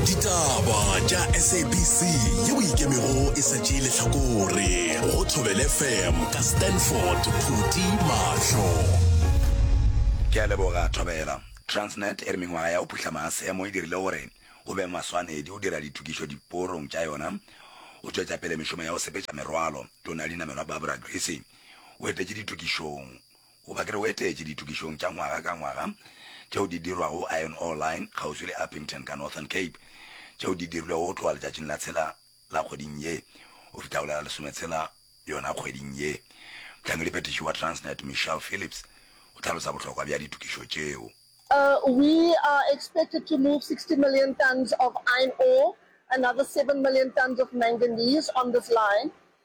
ditaba tša sabc yeo ikemego e sa tšee lehlakore go thobel fm ka stanford phuti mahlo ke a leboga thobela transnet e re mengwaga ya go phuhla maasemo e dirile gore go be maswanedi go dira ditokišo diporong tša yona go tšwetša pele mešomo ya go sepetša merwalo tona ya dinamelwa barbara grissy o etetše ditokišong Goba ke re o etetše ditokišong tša ngwaga ka ngwaga tšeo di dirwago Iron Ore Line kgauswi le Upington ka Northern Cape, tšeo di dirilwego go tloga letšatšing la tshela la kgweding ye go fihla go la lesometshela yona kgweding ye. Mohlangediphethiši wa Transnet Michelle Phillips o hlalosa bohlokwa bja ditokišo tšeo. We are expected to move sixty million tons of iron ore, another seven million tons of manganese on this line.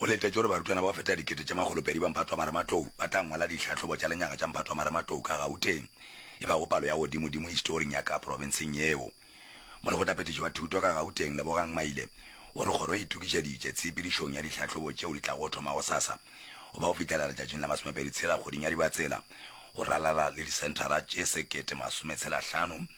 O letetše gore barutwana ba go feta dikete tše makgolopedi ba Mphatwamarematlou ba tla ngwala dihlahlobo tša lenyaga tša Mphatwamarematlou ka Gauteng, e bago palo ya godimodimo historing ya ka profenseng yeo. Molekgotlaphethiši wa Thuto ka Gauteng, Lebogang Maile, o re kgoro e itokišeditše tshepedišong ya dihlahlobo tšeo di tlago thoma gosasa go ba go fihlela letšatšing la masomepedi tshela kgweding ya Dibatsela go ralala le disenthara tše sekete masome tshela hlano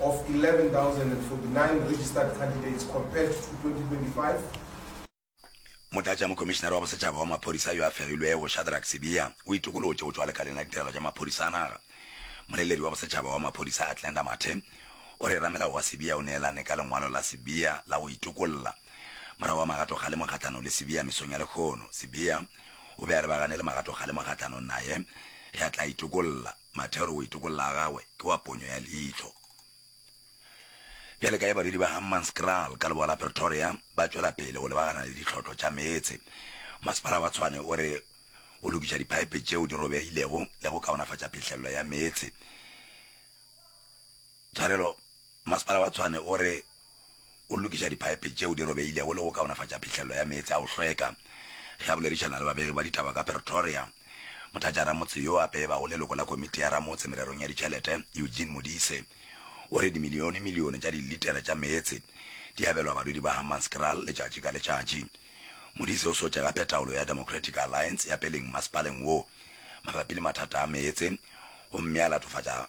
of 11,049 registered candidates compared to 2025. Motlatšamokomišinare wa Bosetšhaba wa Maphodisa yo a fegilwego, Shadrack Sibiya, o itokolotše go tšwa lekaleng la ditirelo tša maphodisa a naga. Moleledi wa Bosetšhaba wa Maphodisa, Athlenda Mathe, o re ramelao wa Sibiya o neelane ka lengwalo la Sibiya la go itokolla. Morago ga magato kgalemo kgahlanong le Sibiya mesong ya lehono, Sibiya o be a re ba ganele magato kgalemo kgahlanong naye ge a tla itokolla. Mathero o itokolla a gagwe ke wa ponyo ya leihlo. Bjale ka ge barwedi ba Hammanskraal ka leboa la Pretoria ba tšwela pele go lebagana le ditlhotlo tša meetse, masepala wa Tshwane o re o lokiša diphaepe tšeo di robegilego le go kaonafatša phihlello ya meetse. Tshwarelo, Masepala wa Tshwane o re o lokiša diphaepe tšeo di robegilego le go kaonafatša phihlello ya meetse a go hlweka. Ge a boledišana le babegi ba ditaba ka Pretoria, motlatšaramotse yo a pebago leloko la Komiti ya Ramotse Mererong ya Ditšhelete, Eugene Modise, o re dimilionemilione tša dilitera tša meetse di abelwa badudi ba Hammanskraal letšatši ka letšatši. Modise o swetše gape taolo ya Democratic Alliance ya peleng masepaleng wo mabapi le mathata a meetse gomme a latofatša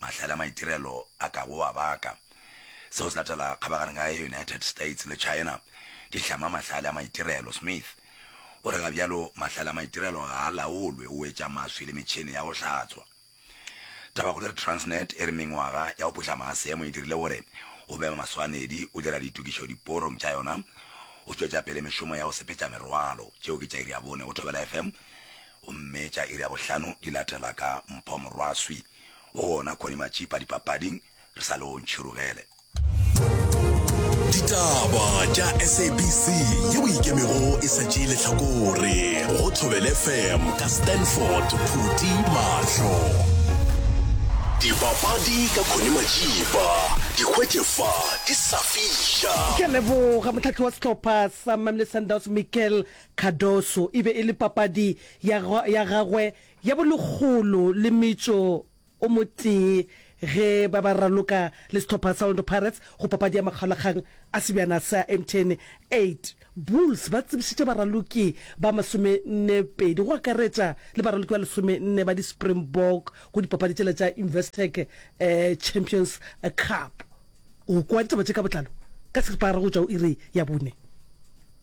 Mahlale a maitirelo a ka go a baka. Seo se latela kgabagareng ya United States le China di hlama mahlale a maitirelo. Smith o re ga bjalo mahlale a maitirelo ga a laolwe, o wetša maswi le metšhene ya go hlatswa. Tabakgolo ya Transnet e re mengwaga ya go putla maasemo e dirile gore go be maswanedi go dira ditokišo diporong tša yona go tšwetša pele mešomo ya go sepetša merwalo. Tšeo ke tša iri ya bone go Thobela FM. Gomme tša iri ya bohlano di latela ka mpho morwaswi go wona kgoni matšipa dipapading, re sa le o ntšhirugele. Ditaba tša SABC ye boikemego e sa tšee lehlakore go Thobele FM ka Stanford Phuti Mahlo. Dipapadi ka Kgoni Matšipa di hwetše fa di sa fiša. Ke a leboga mohlahli wa sehlopha sa Mamelodi Sundowns Mikel Cardoso e be e le papadi ya ya gagwe ya bolekgolo le metšo o motee ge ba ba raloka le sehlopha sa Orlando Pirates go papadi ya makgaolakgang a sebjana sa MTN 8. Bulls ba tsebišitše baraloki ba masomennepedi go akaretša le baraloki ba lesomenne ba di-Springbok go dipapadi tšela tša Investec Champions Cup. O kwa ditaba tše ka botlalo ka seripagare go tšwa go iri ya bone.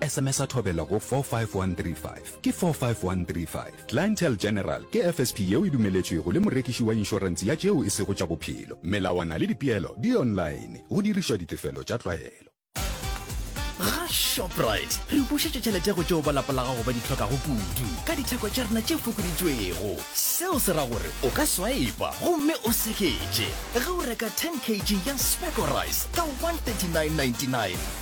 Sms-a thobela go 45135. Ke 45135. Clientele General ke FSP yeo e dumeletšwego le morekiši wa inšorense ya tšeo e sego tša bophelo. Melawana le dipeelo di online, go dirišwa ditefelo tša tlwaelo. Ga Shoprite re bušetša tšhelete go tšeo ba lapa la gago ba di hlokago kudu ka ditheko tša rena tše fokoditšwego. Seo se ra gore o ka swaipa gomme o seketše ge o reka 10 kg ya Specco Rice ka 139.99.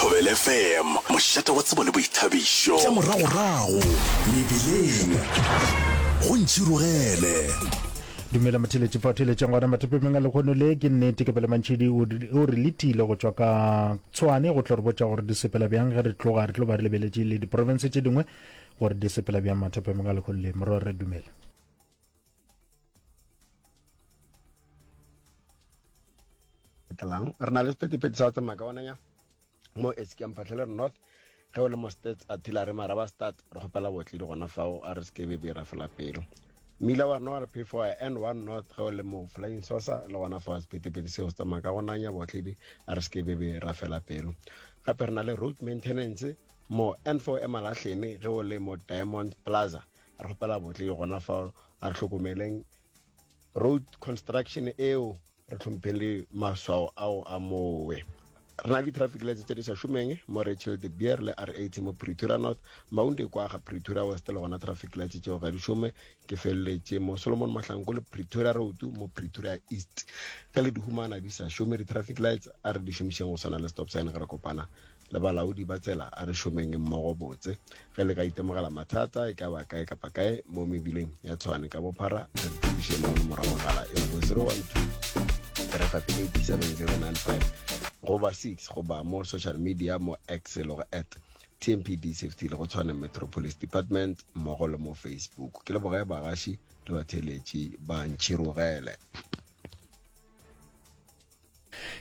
Thobela FM, mošate wa tsebo le boithabišo. Tša moragorago mebileng go ntšhirogele. Dumela motheletši fa o theletšeng gona mathopemeng a lekgono le ke nnete ke pele mantšhedi o re letile go tšwa ka tshwane go tlo re botša gore di sepela bjang ge re tloga re tlo ba re lebeletše le diporofense tše dingwe gore di sepela bjang mathopemeng a lekgono le morwa re dumela tlang re na le sephethephethe sa go tsamaya ka onanya mo eskem phatlhelere north ge o le mo states a thila re maraba start re kgopela botledi gona fao a re se kebe be ra fela pelo mmila wa rona wa re p four n one north ge o le mo flying sosa le gona fao sephethephethe seo se tsamaya ka gonanya botledi a re se kebe be ra fela pelo gape re na le road maintenance mo n four emalahlene ge o le mo diamond plaza rapela botle ke gona fa a re hlokomeleng road construction eo re tlhomphe le maswao ao a mowe re na le traffic lights tse di sa šomeng mo rachel de beer le rat mo pretoria north maunde kwa ga pretoria west le gona traffic lights tseo ga di šome ke feleletše mo solomon mahlanko le pretoria road mo pretoria east ka le dihumana di sa šome di-traffic lights a re di šomišeng go swana le stop sign ge re kopana Le balaodi ba tsela, a re šomeng mmogo botse. Ge le ka itemogela mathata, e ka ba kae kapa kae, mo mebileng ya Tshwane ka bophara, re re thušeng mo nomora mogala e lego 012-358-7095 goba 6 goba mo social media mo X e lego at TMPD Safety le go Tshwane Metro Police Department mmogo le mo Facebook. Ke leboge bagaši le batheeletši ba Ntšhirogele.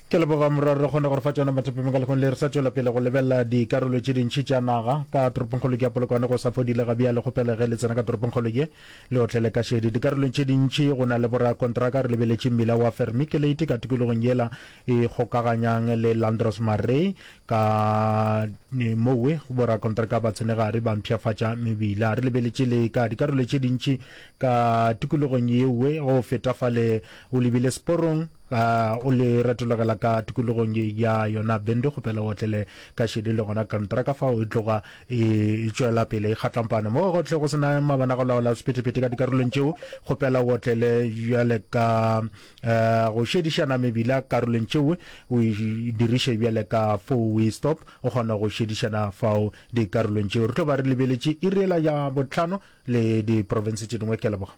Ke leboga morwa re kgone gore fa tsona mathapeng ka lekgong le re sa tswela pele go lebelela dikarolo tše dintšhi tša naga ka toropongkgolo ke ya polokwane go sa fodile ga bjale kgopela ge le tsena ka toropongkgolo ye le otlele ka šedi dikarolong tše dintšhi go na le borakontraka re lebeletše mmila wa fermi ke leite ka tikologong yela e kgokaganyang le landros marey ka mowe borakontraka ba tsenegare ba mpšhafatša mebila re lebeletše le ka dikarolo tše dintšhi ka tikologong yewe go feta fale o lebile sporong A o le retologela ka tikologong ye ya yona bende kgopela o tlele ka šedi le gona kontraka fao e tloga e tšwela pele e kgatlampana mo gotlhe go sena mabana go laola sephethephethe ka dikarolong tšeo kgopela o tlele bjale ka eh, go šedišana mebila karolong tšeo o e diriše bjale ka four way stop o kgona go šedišana fao dikarolong tšeo re tlo ba re lebeletše iriela ya botlhano le diprofense tše dingwe ke leboga